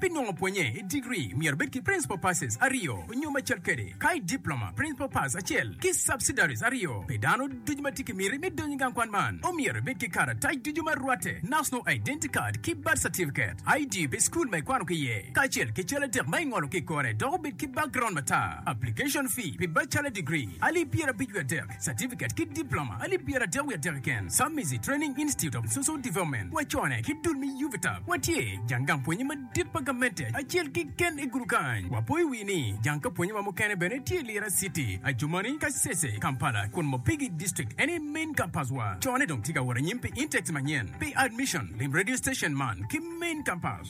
Pi nongo pwonye i digri, myero ibed ki Principal Passes aryo nyo macel kede, ka i Diploma, Principal Pass acel ki Subsidiaries aryo. Pi dano ducu ma tye ki miti me donyo i gang kwan man, omyero ibed ki karatac ducu ma rwatte, National Identity Card ki Birth Certificate, ID pi school ma ikwano ki iye, kacel ki cal adek ma ingolo ki i kore dok obed ki background matar. Application fee pi Bachelor Degree, alip pyerabicwi adek. Certificate ki Diploma alip pyeradek wiye adek keken, Submizi Training Institute of Social Development, wacone ki dul me UVTAB. Watye jang gang pwonye madit pa gamente acel keken i gudu kany. Wapoyo wii ni jang ka pwonyewa mukene bene tye i Lira City, Adjumani, Kasese, Kampala, kun Mopigi District en aye main campus wa. Cone dong tye ka wot anyim pi intakes manyen. Pi admission, lim radio station man ki main campus.